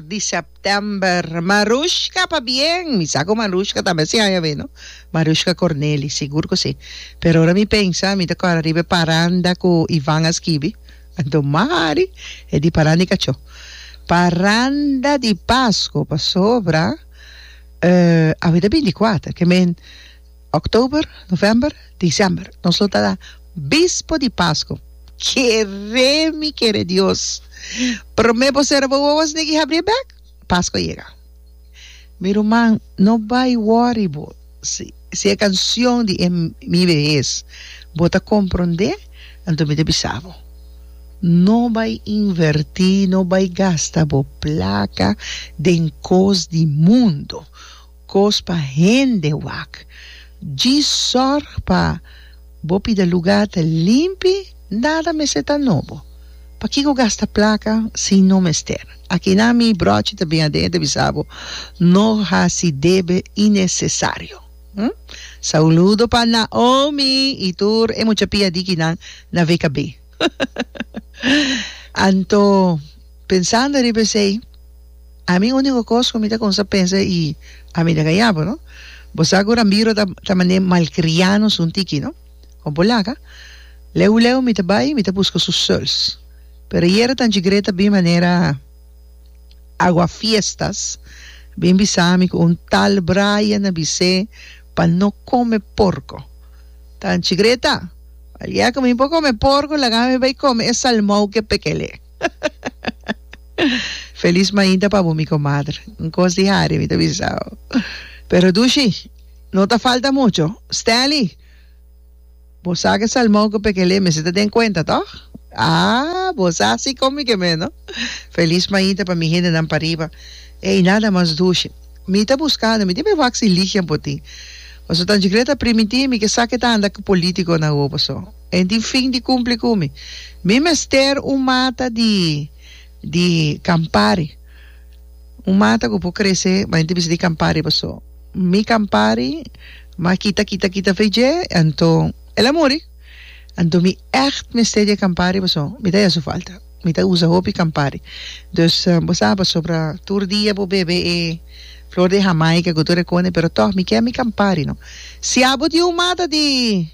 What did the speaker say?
di September Marushka pabien mi sa ku Marushka ta mester haña awe no Marushka Corneli sigur ku si pero ora mi pensa mi ta kòrda riba e paranda ku Ivan a skibi anto mari e di paranda di kachó paranda di Pasko pasobra awe ta binti kuater ke men Oktober, novèmber, desèmber, nos lo ta bispo di Pasko. Keré mi keré Dios! Promé bo serba wowoes negi habri e bèk, Pasko a yega. Mi ruman, no bai wòri bo si e kanshon di e mi behes bo ta komprondé, anto mi ta bisa bo, no bai invertí, no bai gasta bo plaka den kos di mundu. Kos pa hende wak. Dji sòrg pa bo pida lugá ta limpi, nada mester ta nobo. Pakiko gasta plaka si no mester? Akinan mi bròchi ta bin aden ta bisa bo, no hasi debe inesesario. Hm? Sauludo pa Naomi i tur e mucha pia di kinan na VKB. Anto, pensando riba esei. Ami úniko kos ku mi ta kumsa pensa i a mi ta kayá bo, no? Bo sa ku Rambiro ta ta manera malkriá nos un tiki, no? Kon por laga? Leu leu mi ta bai mi ta buska su suls. Pero ayera Tanchi Grey ta bin manera aguafiestas bin bisa mi ku un tal Brian a bis'é pa no kome porko. Tanchi Grey ta, Al día ku mi por kome porko laga mi bai kome e salmou ku e pekel'é. Feliz mainta pa bo mi comadre. Un cos di hari mi ta bisao. Pero dushi, no ta falta mucho. Stanley, bo sa cu salmon cu pekelé mester ta den cuenta, toch? Ah, bo sa si con mi kemé, no? Feliz mainta pa mi hendenan pariba. Ey, nada mas dushi. Mi ta buscando, mi tin be wak si ligia bo tin. Pasobra tanchi creer ta primitivo mi ke sa ke ta anda cu politiconan hopi so. E tin fin di cumpli cu mi. Mi mester un mata di di Campari. Un mata cu por crece, ma e tin bisa di Campari paso mi Campari ma kita kita kita fe dje anto el a muri. Anto mi echt mester di e Campari paso mi ta haci su falta. Mi ta usa hopi Campari. Dus bo sa pasobra tur dia bo bebe e flor di Jamaica cu tur e cone pero toch mi kier mi Campari no. Si abo tin un mata di.